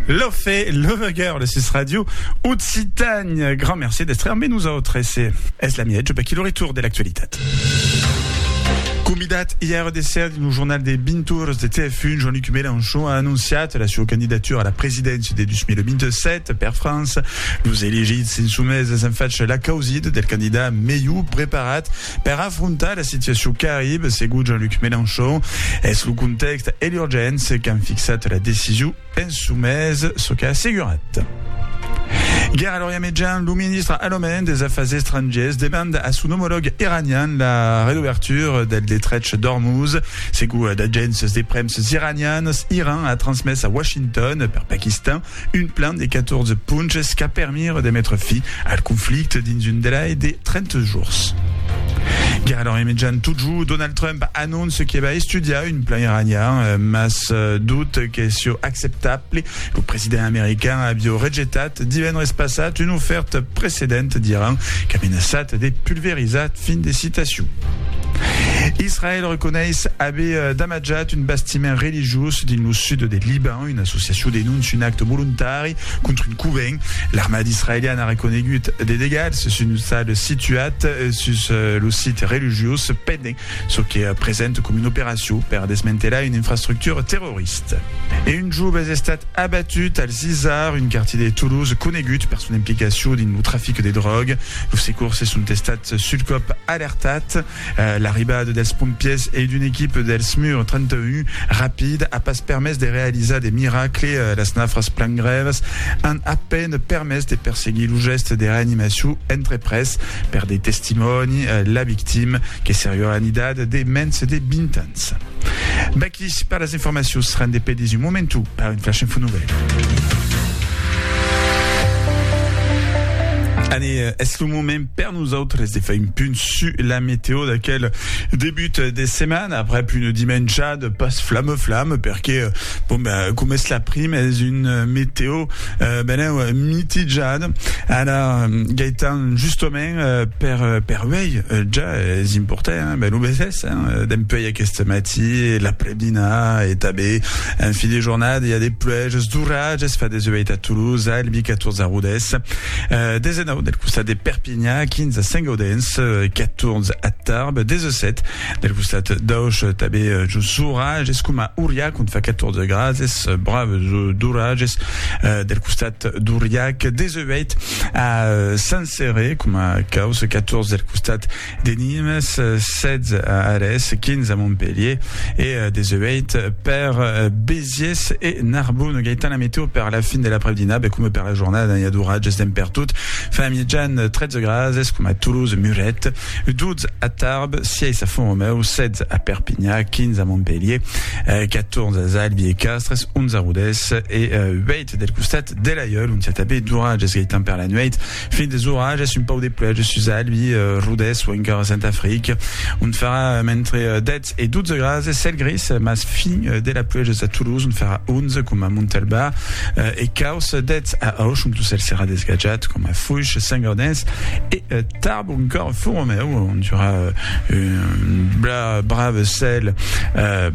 Lofé, Loveger, le sus radio, Occitane. Grand merci d'être mais nous autres. C'est es la miège, qui le retour de l'actualité. Convidat hier de ser dins lo jornal de 20 tours de TF1, Jean-Luc Mélenchon a anunciat la seva candidatura a la presidència de 2027 per França. Los elegits insumèses en fach la causit del candidat melhor preparat Per afrontar la situacion qu'arribe, segon Jean-Luc Mélenchon, es lo contèxt e l'urgéncia qu'an fixat la decision en çò mes, çò qu'a assegurat. Guerra l'Orient Mejan, lo ministre alemand des Afars Estrangiers demanda a son omològ iranian la redobertura del detrech d'Ormuz. Segon d'agéncias de premsas iranianas, Iran a transmés a Washington, per Paquistan, Un plan de 14 ponches qu'a permire de metre fi al conflicte dins un delai de 30 jours. Guerra d'Orient Mitjan totjou, Donald Trump anonce que va estudiar un plan iranian, eh, mas eh, dut que sieu acceptable. Lo president american avieu rejetat divendres passat una oferta precedent d'Iran qu'a menaçat de pulverizar. Fin de citacion. Israel reconeish aver eh, damatjat un bastiment religiós dins lo sud de Liban. Una associacion denóncia un acte volontari contra un covent. L'armada israeliana a reconegut de degats sus un ostal situat sus lo sit religiós pendent çò que presenta coma una operacion per desmantelar una infrastructura terrorista. E un jove es estat abatut al Zizar, un quartier de Toulouse conegut per son implicacion dins lo trafic de dròga. Los secorsses son estats sul còp alertats. L'arribada dels pompièrs e d'una equipa del SMUR 31 rapid a pas permés de realizar de miracle, las nafras plan grèvas an a peine permés de perseguir lo gèste de reanimacion entreprés per de testimòni, la victima que seriá en idat de mens de 20 ans. Vaqui per las informacions, rende pedis un momentu per un flash info nouvèl. Anne, es lo moment Per nosautres de far un punt su la meteo d'aquel debut de setmana aprèp una dimenjada pas flamme flamme perque bon ben com es la prim es una meteo eh, benèu mitijada ara Gaëtan justament per per uèi ja es important hein, ben lo vesés hein, dempuèi aqueste matí l'aprèp-dinà e tanben en fin de jornada i a de pluèges d'oratges fa 18 a Toulouse, Albi 14 a Rodés. Euh, desenau del costat de Perpinha, 15 a Saint-Gaudens, 14 euh, a Tarbes, 17 del costat d'Auch, tabé euh, just s'orages, es coma Uriac, on fa 14 grads, es braves d'orages euh, del costat d'Uriac, 18 a Saint-Céré, coma Caus, 14 del costat De Nimes, 16 a Arès, 15 a Montpelhier e 18 per Béziers e Narbonne. Gaëtan, la météo per la fin de l'après-dinap e coma per la jornada, i a d'oratges d'en pertot. Fa a mièjan 13 grases coma a Toulouse, Muret, 12 a Tarbes, 6 a Font-Romeu, 16 a Perpinha, 15 a Montpelhier, 14 a Zalbi e Castres, 11 a Rodés e 8 del costat de l'Aiòl, ont i a tanben d'oratges, Gaëtan, per la nuèit. Fin des orages, un pauc de pluèja sus Albi, Rodés o encara Sant'Afric, ont farà entre 10 e 12 grads e cèl gris, mas fin de la pluèja sus a Toulouse, ont farà 11, coma a Montalbà, e caus 10 a Auch, ont lo cèl serà desgatjat, coma a Foish, Saint-Gaudens e Tarbes, o encara Font-Romèu, ont i aurà un brave cèl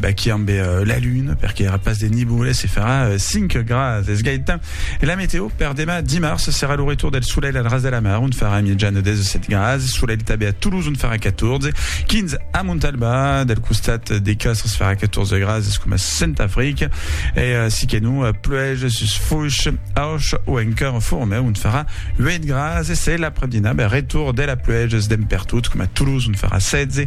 baqui ambe la luna, perqué i aurà pas de niboles e farà 5 grads. Es Gaëtan. E la meteo per demà dimars serà lo retour del solelh al ras de la mar, ont farà miejana 17 grads, solelh tabé a Toulouse ont farà 14, 15 a Montalba, del costat de Castres farà 14 grads, es coma Santa Africa, e eh, si que non, pluège sus Foix, Auch o encara Formeu ont farà 8 grads, e se l'après-dinà, ben, retour de la pluèges d'en pertot, coma Toulouse ont farà 16,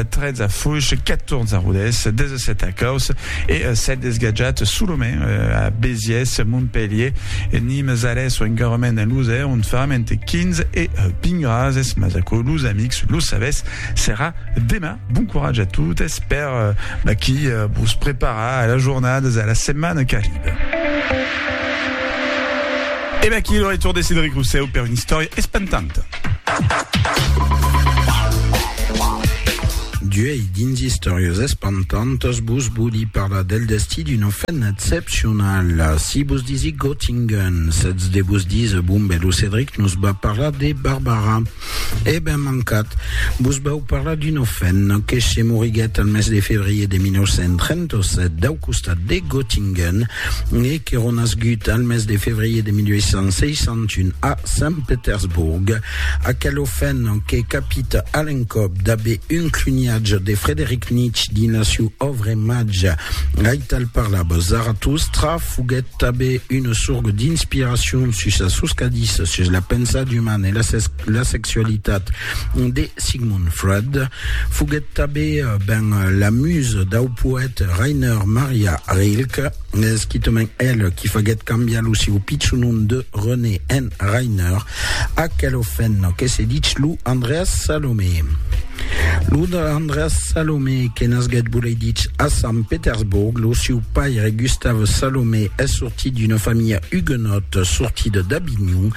13 eh, a Foix, 14 a Rodés, 17 a Caus, E s'ètz desgatjat solament a Béziers, Montpelhier, Nimes, Arès o encarrement en Losèr, ont faram entre 15 e 20 grases, mas aquò los amics lo sabètz, serà demà. Bon coratge a totes per vaquí vos preparar a las jornadas, a la setmana qu'arriba. E vaquí lo retorn de Cedric Rousseau per una istòria espantanta. D'uèi dins Istòrias espantantas vos vòli parlar del destí d'una femna excepcionala. Si vos disic Göttingen, sètz de vos díser, bon ben, lo Cedric nos va parlar de Barbara. E ben mancat! Vos vau parlar d'una femna que se moriguèt al mes de febrier de 1937 dau costat de Göttingen e que renasgut al mes de febrier de 1861 a Sant Petersborg. Aquela femna que capit a l'encòp d'aver un cluniatge de Frederic Nietzsche dins la siu òvre Mage, aital parlava Zarathustra, foguèt Tanben una sorga d'inspiracion sus la soscadissa sus la pensada umana e la sexualitat de Sigmund Freud foguèt tanben ben la musa dau poèt Rainer Maria Rilke, esquitament el qui faguèt cambiar lo sieu pichon nom de René en Rainer, Aquel ofèn que se dich lo Andreas Salomé. Lo Andreas Salomé que nasguèt volei dich a Sant Petersborg, lo siu paire Gustav Salomé es sortit d'una familha huguenòt sortida d'Avinhon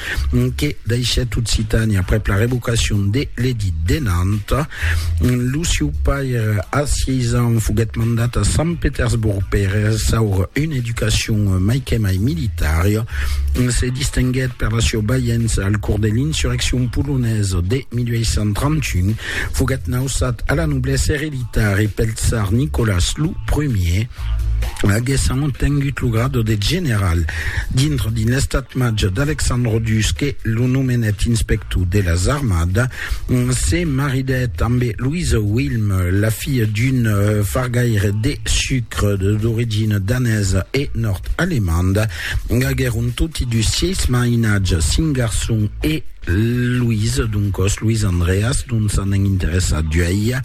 que daishèt Occitània aprèp la revocacion de l'Edit de Nantes. Lo sieu paire, a sièis ans, foguèt mandat a Sant Petersborg per ressaur una educacion mai que mai militària. Se distinguèt per la sieu baiença al cors de l'insurreccion polonesa de 1831. Foguèt nausat a la noblesa ereditari pel tsar Nicolas lo Primier, aguèssan obtengut lo grado de general. Dintre dins l'estat-màger d'Alexandre Dusque, lo nomenèt inspector de las armadas. Se maridèt ambe Louise Wilm, la filha d'un fargaire de sucre d'origina danesa e nòrd-alemanda. Aguèron toti dus sièis mainatges, cinc garçons e Louise, doncòs Louis Andreas, dont s'anèn interessat d'uèi.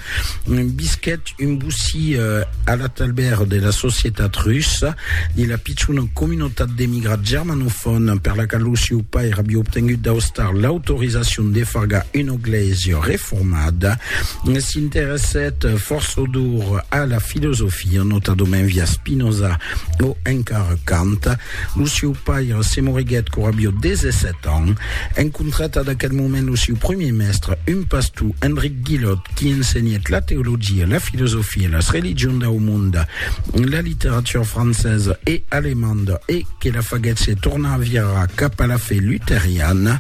Visquèt Un bocí a la talbèra de la societat russa de la pichona comunotat d'emigrats germanofòn per la qual lo sieu pair aviá obtengut d'Austar l'autorizacion de fargar una glèisia reformada, s'interessèt forçodor a la filosofia, notadament via Spinoza o encara Kant. Lo sieu pair, se moriguèt quora avió 17 ans. Encontrat ad aquel moment lo sieu premier mèstre, un pastor, Enric Guillot, qui ensenhèt la teologia, la filosofia, las religions dau monde, la literatura francesa e alemanda e que la faguèt se tornar a virar cap a la fe luteriana.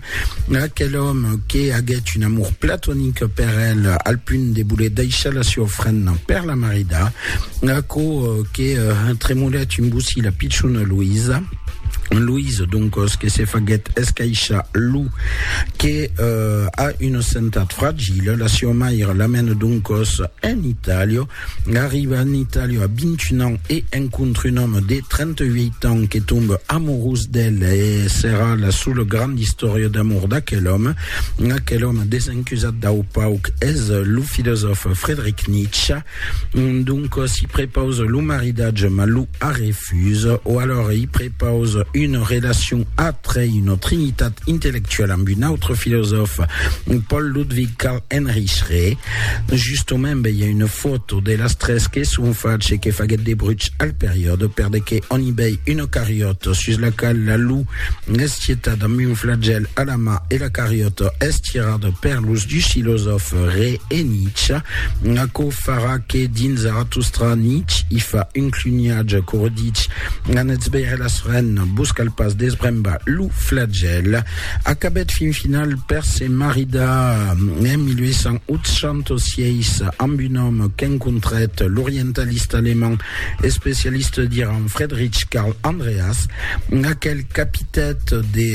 Aquel òme que aguèt un amor platonic per el al punt de voler daishar la sieu ofrenda per la marida. Aquò que uh, tremolèt un bocí la pichona Louisa, Louise, donc, ce que se faguet escaisha Lou, que euh, a une santat fragile, la sua mère l'amène donc en Italie, arrive en Italie à 21 ans et rencontre un homme de 38 ans qui tombe amoureux d'elle et sera la seule grande histoire d'amour d'aquel homme. Aquel homme désincusat d'au pauc est le philosophe Friedrich Nietzsche, Donc si prepause lo maridatge ma lo arrefuse o alors i prepause une relacion atre une trinitat intellectuelle amb un autre filosòfe Paul Ludwig Karl Heinrich Schre justomemb i a une foto de las tres que son fache que faguèt de bruch al periòde per de que on i bèi une cariòta sus la qual la lu es tietat amb un flagèl a la ma e la cariòta es tirada per los dus filosòfe Re e Nietzsche Aquò farà que dins Zarathustra Nietzsche i fa un cluniatge quora dich, An esbèire las ren, vos cal pas desbrembar lo flagèl. Acabèt fin final per se maridar en 1886 amb un òme qu'encontrèt, l'orientalista alemand Especialiste diràn Fredrich Carl Andreas, aquel capitèt de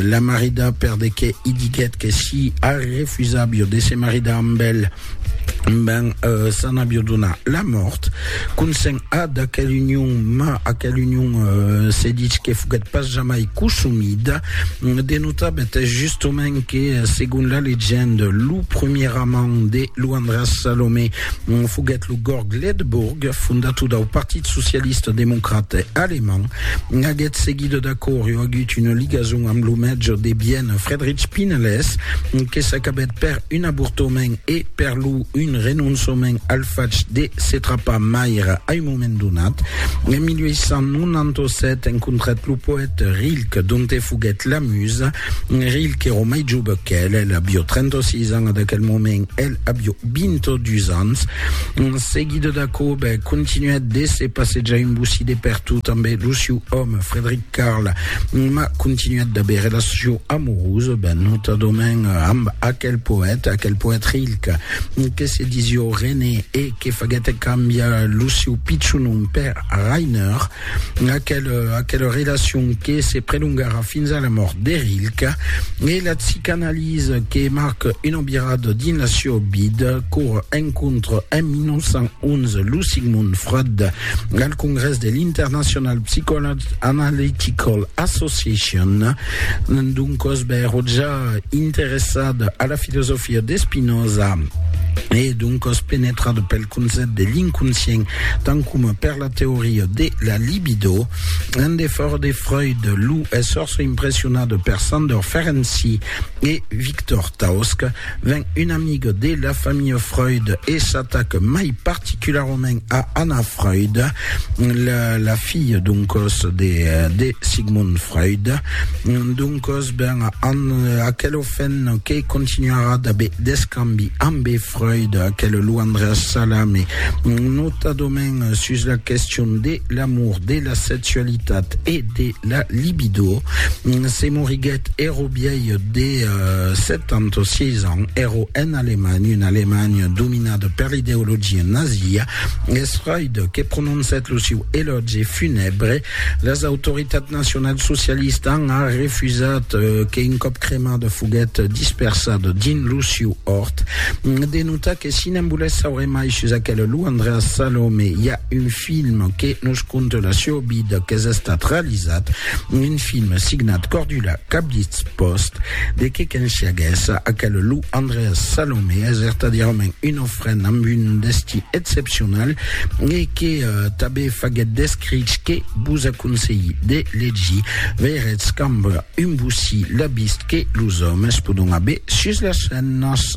la maridar perdequé i diguèt que si Harry refusàvio de se maridar amb el, ben s'an avio donar la mòrt. Consent a d'aquel union, ma aquel union se ditz que foguèt pas jamai cosumida. De notar betès justement que segon la legende, lo premier amant de lo Andreas Salomé Foguèt lo Gorg Ledebourg, fondator dau Partit Socialista Democrat Alemand. Aguest seguidor d'acò riu agut una ligason amb lo mètge de Viena Friedrich Pinelès, que s'acabèt per un avortament e per lo un renonçament al fach de se trapar maire a un moment donat. En 1897 encontrèt lo poète Rilke, donte foguèt la musa. Rilh qu'èro mai jove qu'el, el avió 36 ans a d'aquel moment, el avió 22 ans. En seguida d'aquò, bè, continuèt de se passejar un bocí de pertot amb lo siu òme, Frederic Carl, ma continuèt d'aver relacion amorosa, bè, notadament amb aquel poète, aquel poète Rilh, que se disió René e que faguèt cambiar lo siu pichon nom per Rainer. Aquela, aquela relacion que se prelongarà fins a la mòrt de Rilke e la psicanalisa que marca una virada dins la sieu vida, qu'ora encontra en 1911 lo Sigmund Freud al congrès de l'International Psychoanalytical Association. Doncòs bèro ja interessada a la filosofia de Spinoza e doncòs penetrada pel concèpt de l'inconscient, tant coma per la teoria de la libido. En defòrt de Freud, lo es fòrça impressionat per Sandor Ferenczi e Victor Tausk. Ven un amic de la familha Freud e s'atac mai particularament a Anna Freud, la, la filha doncòs de, de Sigmund Freud. Doncòs, ben, an, aquel ofèn que continuarà d'aver d'escambi ambe Freud, aquel luandre salami, notadament sus la question de l'amour, de la sexualitat e de la libido, se moriguèt ero biei de 76 ans, ero en Alemanha, un Alemanha dominada per l'ideologia nazia, es Freud que prononcèt lo siu elògi funèbre Las autoritats nacionalsocialistas an a refusat que un còp cremada foguèt dispersada dins lo siu òrt. De notar que si ne'n volètz saure mai sus aquela lo Andreas Salome i a un film que nos conta la siua vida qu'es estat realizat, un film signat Cordula Cablitz Post, de que qu'ensiaguèssa aquela lo Andreas Salome es vertadièrament una Fren amb un destí excepcional e que tanben faguèt d'escrich que vos aconselhi de legir. Veiretz qu'amb un bocí la vist que los òmes pòdon aver sus las scenas.